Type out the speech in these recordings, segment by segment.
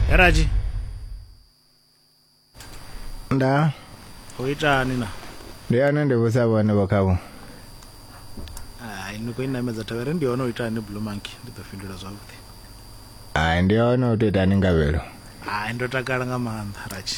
heraji nda u itani na ndi ane ndi vhusa vhone vho khavho hai ni khou i namedza thavhere ndi hone u itani blue monkey ndi ḓo fhindula zwavhuḓi hai ndi hone u tou itani ngavhelo hai ndo takala nga maanḓa raji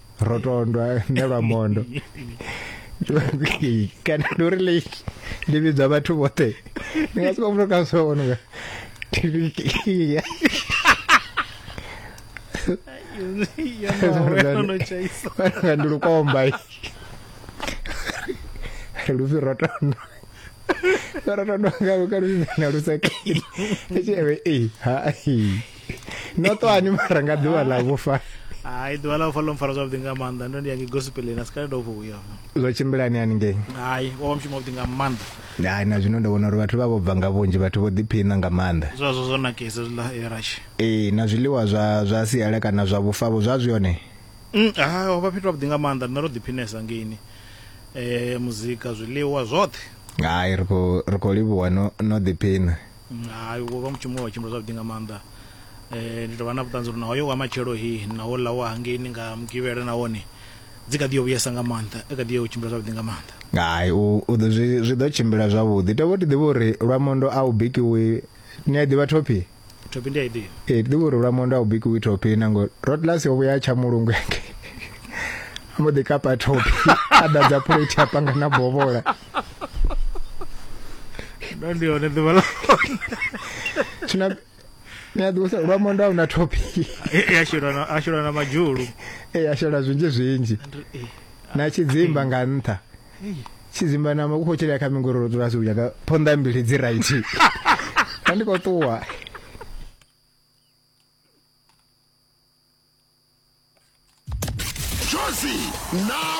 rotondwa ne lwa mondo kana ndi uri le ndi vhidzwa vhathu vhoṱhe ndi nga siko muthu ka so ono nga nga ndi lukomba ri lufi rotondwa rotondwa nga luka lufi na lusakile echeve e ha no to ani mara nga ḓuvha ḽa vhufa hai ḓuvha ḽa vhufa ḽo mpfara zwavhuḓi nga maanḓa ndo ndi ya ngei gospeleni a si kale ndo vho uya zwo tshimbilani hani ngei hai wo vha mushumo wavhuḓi nga maanḓa hai na zwino ndo vhona uri vhathu vha vho bva nga vhunzhi vhathu vho ḓiphina nga maanḓa zwazwo zwo nakesa zwiḽa erashi ee na zwiḽiwa zwa zwa siala kana zwa vhufavho zwa zwi hone mm, ha ho vha fhethu havhuḓi nga maanḓa rine ro ḓiphinesa ngeini um muzika zwiḽiwa zwoṱhe hai ri khou livhuwa no ḓiphina Hai, wo vha u mushumo we wa tshimbila zwavhuḓi nga maanḓa. Ndi tou vha na vhuṱanzi uri na hoyo wa matshelo hi na houḽa wa hangeini nga Mugivhela na wone dzi kha ḓi yo vhuyesa nga maanḓa, a kha ḓi yo tshimbila zwavhuḓi nga maanḓa. Hai, u u ḓo zwi zwi ḓo tshimbila zwavhuḓi. Tovho ti ḓivha uri Lwamondo a u bikiwi ni a i ḓivha thophi? Thophi ndi a i ḓivha. Ee, ti ḓivha uri Lwamondo a u bikiwi thophi na ngo Rotlasi o vhuya a tsha mulungu hangei a mbo ḓi kapa thophi a ḓadza phuleithi a panga na bovhola. ndo ndi hone ḓuvha ḽa tshina ṋea ḓuvha sa lwa mondo a una topic ya shela na a shela na madzhulu eh a shela zwinzhi zwinzhi eh, na tshidzimba nga nṱha tshidzimba na makupo tshela kha mingororo dzula si uyaga phonḓa mbili dzi right ka ndi khou ṱuwa Josi na